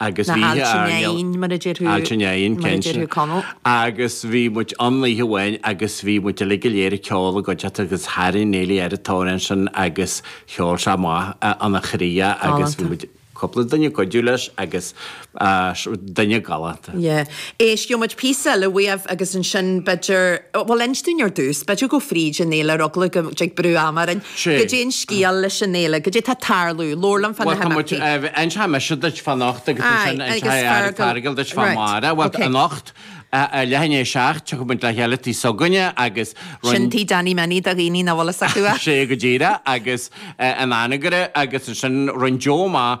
Agus Na bhíodh aillte airnéal, Neaghain, mar a deir thú, aillte Neaghain, mar a cinnte. deir thú Conall. Agus bhí muid ann oíche amháin agus bhí muid uilig go léir ag ceol i gcuideachta agus tharraing Neilí air an t-amhrán sin agus cheol sé amach óna chroí é agus bhí Galánta. muid, cúpla duine ag cuidiú leis agus duine galánta. Yeah. Éistfidh muid píosa, le Wave agus ansin b'fhéidir, bhuel inis dúinn ar dtús, b'fhéidir gabh fríd an fhéile ar eagla go dtig brú ama orainn, goidé an scéal leis an fhéile, goidé atá ag tarlú, labhair liom fá na himeachtaí. Bhuel tá muid, inseoidh mise duit fá anocht agus ansin inseoidh Feargal duit fá amárach, bhuel anocht ar leath i ndiaidh a seacht tiocfaidh muid le chéile tigh s'againne agus roinn, sin tigh Danny Minnie do dhaoine nach bhfuil fhios acu é. Sea go díreach agus in Anagaire agus ansin roinnt mhaith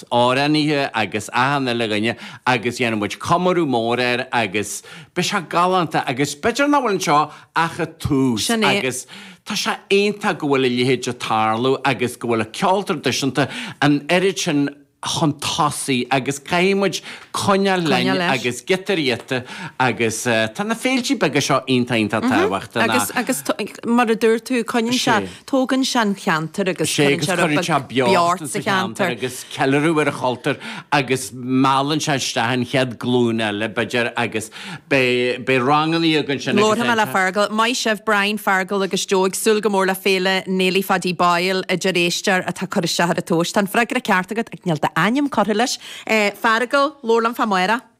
amhránaithe agus achan uile dhuine agus dhéanfaidh muid comóradh mór air agus beidh sé galánta agus b'fhéidir nach bhfuil anseo ach an tús Sin é. agus tá sé iontach go bhfuil a leithéid ag tarlú agus go bhfuil an ceol traidisiúnta an oiread sin chun tosaigh agus caithfidh muid coinneáil linn Coinneáil leis. agus giota riata agus tá na féiltí beaga seo iontach iontach tábhachtach. Agus, agus, mar a dúirt tú, coinníonn sé. Is é. Tógann sé an ceantar agus sé cuireann agus sé ar a chuireann sé beag beocht beart sa sa cheantar cheantar. agus ceiliúradh ar an chultúr agus meallann sé isteach an chéad glúin eile, b'fhéidir, agus beidh, beidh rangannaí acu ansin agus Labharfaidh mé le déanfar. Feargal. Maith sibh, Brian, Feargal agus Joe. Ag súil go mór le Féile Néilí Phaidí Boyle a deir éisteoir atá curtha isteach ar an tomhas. Tá an freagra ceart agat ach níl d'ainm curtha leis. Eh, Feargal, labhair liom fá amárach.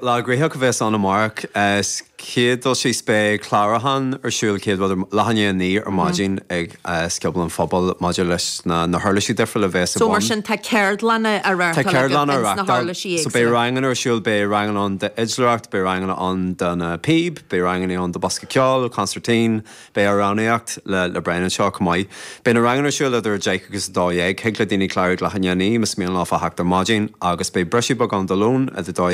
Lá gnoitheach a bheas ann amárach. 'S chéad dul síos beidh clárúchán ar siúl céad rud ar leath i ndiaidh a naoi ar maidin ag Scioból an Phobail maidir leis na na huirlisí difriúla a bheas ar So mar bun. sin tá ceardlanna á Tá reáchtáil agaibh ceardlanna a ins na reáchtáil huirlisí so beidh éagsúla. ranganna ar siúl, beidh ranganna ann d'fhidléireacht, beidh ranganna ann do na píb, beidh ranganna ann do bosca ceoil, concertín, beidh amhránaíocht le le Brian anseo chomh maith. Beidh na ranganna ar siúl idir 10 agus 12. Thig le daoine clárú ag leath i ndiaidh a naoi, más mian leofa theacht ar maidin, agus beidh briseadh beag ann do lón idir dó